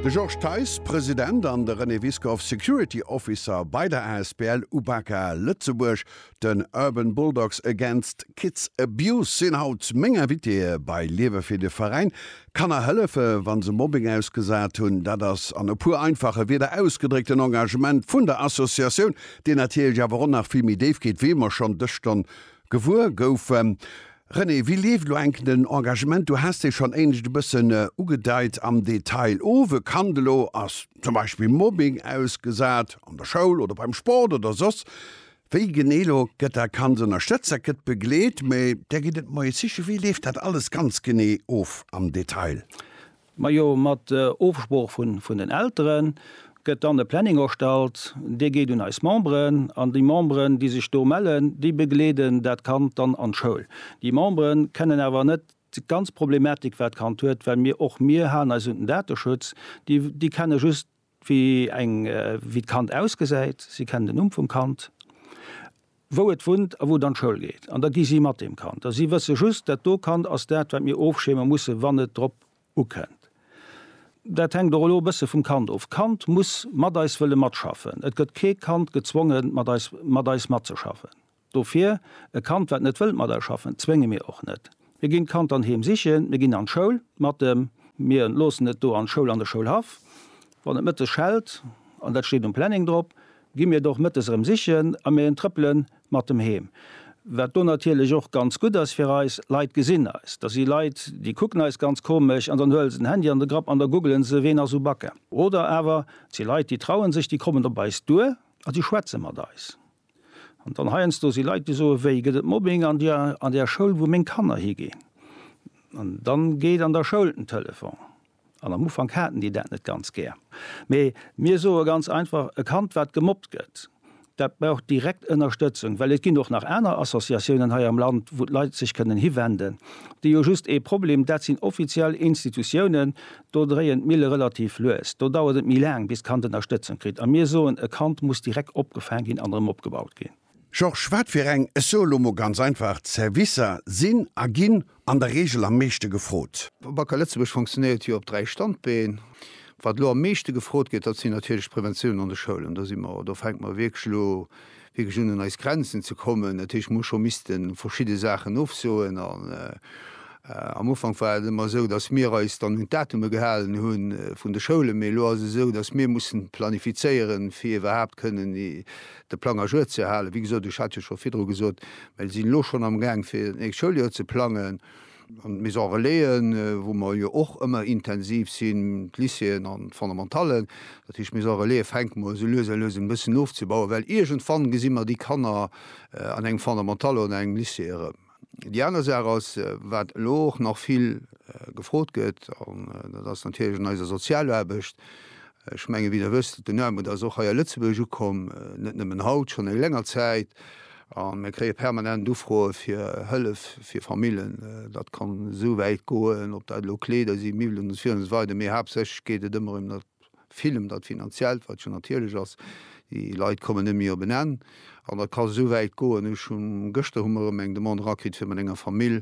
De Georges Theis, President, an de René Wiskow, Security Officer bei der asbl Ubaka Lëtzebuerg, den Urban Bulldogs Against Kids Abuse, sinn haut meng Invitéë bei Liewe fir de Veräin. Kanner hëllefe wa se Mobbing ausgesat hunn, dat ass an e puer einfache Wierder ausgedréckt en Engagement vun der Associatioun, deen natierlech awer och nach vill méi déif geet, wéi mer schonn dës Stonn Gewuer goufen. René, wéi leeft elo enk den Engagement? Du has dee schonn éinescht e bëssen ugedeit am Detail. Of e Kand elo ass zum Beispill Mobbing ausgesat, an der Schoul oder beim Sport oder soss wéi genee, elo gëtt dat Kand ënnerstëtzt, dat gëtt begleet, mä Där gitt et Moyesche. Wéi leeft dat alles ganz genee of am Detail? Majo, mat Ofsprooch vun den Elteren gëtt dann e Planning erstallt, dee geet un eis Memberen an déi Memberen, déi sech do mellen, déi begleeden dat Kand dann an d'Schoul. Déi Memberen kennen awer net déi ganz Problematik wat d'Kand huet, well mir och mir halen eis un den Dateschutz, déi kenne just Wéi eng, wéi d'Kand ausgesäit, si kennen den Numm vum Kand, wou et wunnt a wou et an d'Schoul geet. An da gi si mat deem Kand. A si wësse just, dat do Kand ass dat, wat mir ofschierme musse wann et drop ukënnt. Dat hänkt och elo e bësse vum Kand of. D'Kand muss mat eis wëlle matschaffen. Et gëtt kee Kand gezwongen, mat eis, mat eis matzeschaffen. Dofir, e Kand wat net wëllt mat eis schaffen, zwénge mir och net. Mir ginn d'Kand dann heem sichen, mir ginn an d'Schoul mat dem, mir loossen et do an d'Schoul, an de Schoulhaff. Wann et mëttes schellt, an dat steet um Planning drop, gi mir et och mëttes erëm sichen a mir entrëppele mat dem heem. Wat do natierlech och ganz gutt ass fir eis, Leit gesinn eis. Da si Leit, déi kucken eis ganz komesch an dann huele se den Handy an de Grapp an da googelen se, ween ass u Bacca. Oder awer et si Leit, déi traue sech, déi kommen op eis duer a déi schwätze mat eis. An dann heiansdo si Leit, déi soe wéi gëtt et Mobbing an der an där Schoul, wou meng Kanner higinn? An dann geet an der Schoul den Telefon. An am Ufank haten déi dat net ganz gär. Mee mir soe ganz einfach, e Kand, wat gemobbt gëtt, dat brauch direkt Ënnerstëtzung. Well et ginn och nach aner Associatiounen hei am Land, wou d'Leit sech kënnen hiwenden. Déi hu just ee Problem, dat sinn offiziell Institutiounen, Do dréien d'Mille relativ lues. Do dauert et méi laang, bis d'Kand Ënnerstëtzung kritt. A mir soen, e Kand muss direkt opgefaang ginn an erëm opgebaut ginn. Georges, Wat fir eng, ech soe lo mol ganz einfach, Servicer sinn a ginn an der Reegel am meeschte gefrot? Wacker Lëtzebuerg funktionéiert jo op dräi Standbeen. Wat elo am meeschte gefrot gëtt, dat sinn natierlech d'Preventioun an de Schoulen. Do si mer, do fänke mer wierklech elo wierklech un eis Grenzen ze kommen, dat heescht mir hu scho misste verschidde Saachen ofsoen an am Ufank war et ëmmer esou, datt mir eis dann un d'Datume gehalen hu vun de Schoulen, mee elo ass et esou, datt mir mussen planifizéieren, fir iwwerhaapt kënnen de Plang à jour ze halen. Wéi gesot, ech hat jo scho virdru gesot, mir sinn elo schonn amgaang fir d'nächst Schouljoer ze plangen. an d'Maisons Relaisen, wou mer jo och ëmmer intensiv sinn, d'Lycéeën an d'Fondamentallen. Dat heescht, d'Maisons Relaisen fänke mer esou lues a lues un e bëssen ofzebauen, well iergendwann gesi mer déi Kanner an engem Fondamental oder an engem Lycée erëm. Déi aner Saach ass, wat elo och nach vill gefrot gëtt, an dat ass natierlech an eiser Sozialaarbecht, Ech mengen, wéi Der wësst, den Aarmut ass och hei a Lëtzebuerg ukomm, net nëmmen haut, schonn eng länger Zäit. A mir kréie permanent Ufroe fir Hëllef fir Famillen. Dat kann esou wäit goen, ob dat elo Kleeder sinn, Miwwelen usw. Mee haaptsächlech geet et ëmmer ëm dat, vill ëm dat Finanziellt, wat jo natierlech ass. Déi Leit kommen net méi op en Enn. An dat ka esou wäit goen, ech hu gëschter hu mer erëm eng Demande erakritt fir mat enger Famill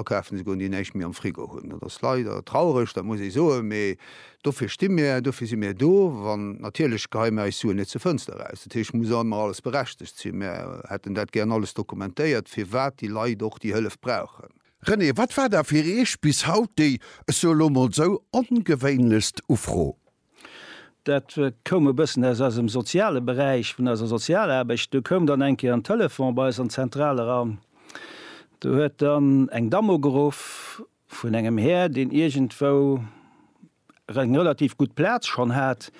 akafen ze goen, déi näischt méi am Frigo hunn. Dat ass leider traureg, dat muss ee soen, mee dofir sti mir, dofir si mir do. An natierlech geheie mir eis Suen net zur Fënster eraus. Dat heescht, et muss ëmmer alles berechtegt sinn. Mir hätten dat gären alles dokumentéiert, firwat déi Leit och déi Hëllef brauchen. René, wat war da fir Iech bis haut déi, ech soe lo mol esou, ongewéinlechst Ufro? Dat koum e bëssen aus eisem soziale Beräich, vun eiser Sozialaarbecht. Do koum dann eng Kéier en Telefon bei eis an d'Zentral eran. Do huet dann eng Damm ugeruff vun engem Här, deen iergendwou eng relativ gutt Plaz schonn hat,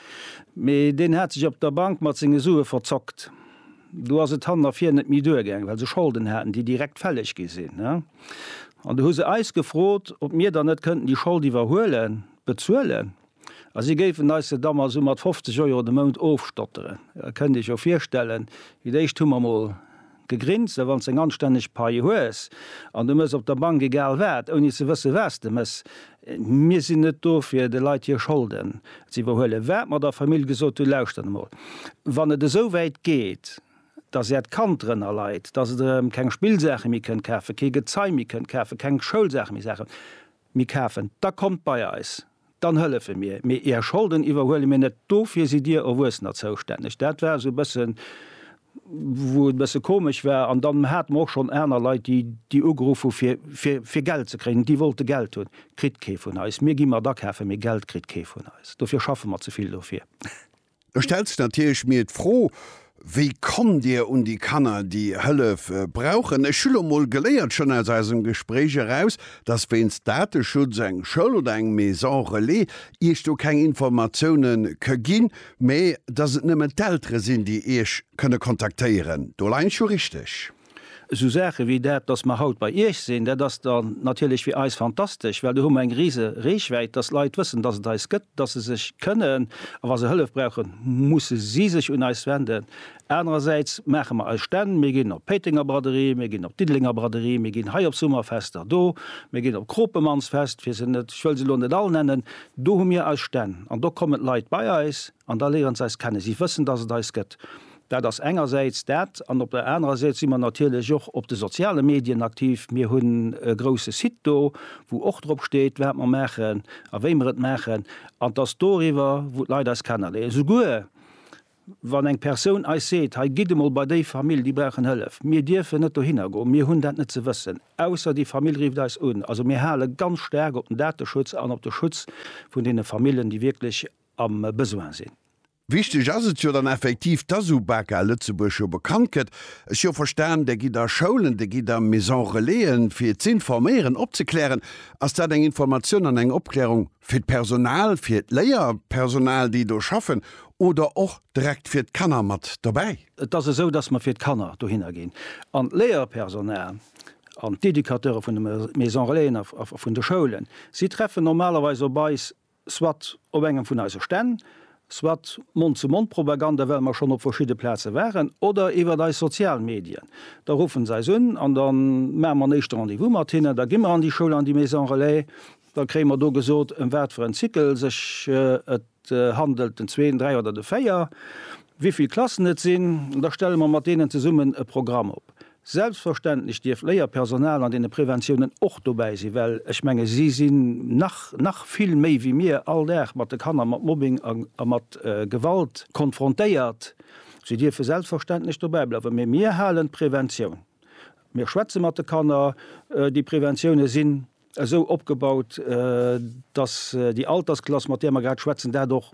mee deen hat sech op der Bank mat senge Sue verzockt. Do ass et han a vir net méi duergaangen, well se Scholden haten, déi direkt fälleg gi sinn. An do hu se eis gefrot, ob mir dann net kënnten déi Schold iwwerhuelen, bezuelen. A si géifen eis se da mol esou mat 50 Euro de Mount ofstotteren. Da kënnt Dir Iech jo virstellen, fir d'éischt hu mer mol gegrinst, well wann s de eng anstänneg Pai hues an de mëss op der Bank egal wat, ouni ze wësse wat s de mëss, mir sinn net do fir de Leit hir Scholden ze iwwerhuelen, wat mer der Famill gesot hunn, lauschtert emol, wann et esou wäit geet, dass Äert Kand drënner leit, dass et erëm keng Spillsaache méi kënnt kafen, kee Gezei méi kënnt kafen, keng Schoulsaache méi saachen, Mir kafen, da kommt bei eis, dann hëllefe mir, mee Är Scholden iwwerhuele mir net, dofir sidd Dir Erwuessener zoustänneg. Dat war esou e bësse wou et e bësse komesch war. An dann hate mer och schonn aner Leit, déi déi ugeruff hu fir fir fir Geld ze kréien, déi wollte Geld hunn. Kritt kee vun eis. Mir gi mat akafen, mee Geld kritt kee vun eis, dofir schaffe mer ze vill dofir. Ech stellen sech natierlech mir d'Fro, Wéi kommt Dir un déi Kanner, déi Hëllef brauchen? Ech hu lo mol geléiert, schonn aus eisem Gespréich eraus, dass wéinst Dateschutz eng Schoul oder eng Maison Relais Iech do keng Informatioune ke ginn, mä dass et nëmmen d'Eltere sinn, déi Iech kënne kontaktéieren. Do leien ech jo richteg? Esou Saache wéi dat, dass mer haut bei Iech sinn, dat ass da natierlech fir eis fantastesch, well do hu mer eng rise Reechwäit, dass Leit wëssen, dass et eis gëtt, dass se sech kënnen, a wa se Hëllef brauchen, musse si sech un eis wenden. Anerersäits maache mer eis Stänn, mir ginn op d'Péitenger Braderie, mir ginn op d'Diddelenger Braderie, mir ginn hei op Summerfester do, mir ginn op d'Kropemannsfest, fir se net, ech wëll se elo net all nennen, do hu mir eis Stänn an do kommen d'Leit bei eis an da léiere se eis kennen. Si wëssen, dass et eis gëtt. Dat ass engersäits dat. An op der anerer Säit si mer natierlech och op de soziale Medien aktiv. Mir hunn e grouse Site do, wou och drop steet, wat mer maachen a wéi mer et maachen. An 't ass doriwwer, wou d'Leit eis kennerléieren. Souguer wann eng Persoun eis seet, hei gitt emol bei déi Famill, déi brauchen Hëllef. Mir dierfen net dohinner goen. Mir hunn dat net ze wëssen, ausser déi Famill rifft eis un. Also mir hale ganz staark op den Dateschutz an op de Schutz vun deene Famillen, déi wierklech am Besoin sinn. Wichteg ass et jo dann effektiv, dass UBAKA Lëtzebuerg jo bekannt gëtt. Ech jo verstan, Der gitt a Schoulen, Der gitt a Maison-relaisen, fir z'informéieren, opzeklären. Ass dat eng Informatioun an eng Opklärung fir d'Personal, fir d'Léierpersonal, déi do schaffen, oder och direkt fir d'Kanner mat dobäi? Et ass esou, dass mer fir d'Kanner dohinner ginn an d'Léierpersonal an d'Educateure vun de Maison-relaisen a vun de Schoulen, si treffen normalerweis op eis soit op engem vun eise Stänn, soit Mond-zu-Mond-Propaganda, well mer schonn op verschidde Plaze waren, oder iwwert eis sozial Medien. Da ruffen se eis un an da maache mer en éischte Rendez-vous mat hinnen. Da gi mer an déi Schoul, an déi Maison Relais. Da kréie mer do gesot, ëm wat fir en Cycle sech et handelt, den zwee, den dräi oder de véier, wéi vill Klassen et sinn. Da stelle mer mat deenen zesummen e Programm op. Selbstverständlech dierf Léierpersonal an deene Preventiounen och dobäi sinn, well ech menge si sinn nach, nach vill méi wéi mir, all Dag mat de Kanner mat Mobbing a mat Gewalt konfrontéiert. Si dierfe selbstverständlech dobäi bleiwen, mee mir halen d'Preventioun, mir schwätze mat de Kanner, déi Preventiounen sinn esou opgebaut, dass déi Altersklass, mat där mer grad schwätzen, dat och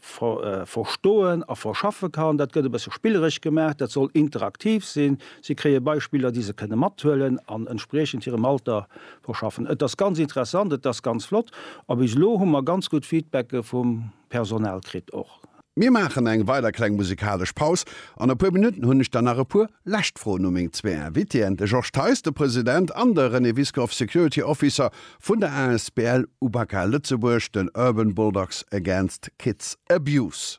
verstoen a verschaffe kann. Dat gëtt e bësse spilleresch gemaach, dat soll interaktiv sinn. Si kréie Beispiller, déi se kënne mathuelen an entspriechend hirem Alter verschaffen. Et ass ganz interessant, et ass ganz flott a bis elo hu mer ganz gutt Feedbacke vum Personal kritt och. Mir maachen eng weider kleng musikalesch Paus. An e puer Minutten hunn ech dann nach e puer lescht Froen u meng zwee Invitéen, de Georges Theis, de President, an de René Wiskow, Security Officer vun der asbl Ubaka Lëtzebuerg, den Urban Bulldogs Against Kids Abuse.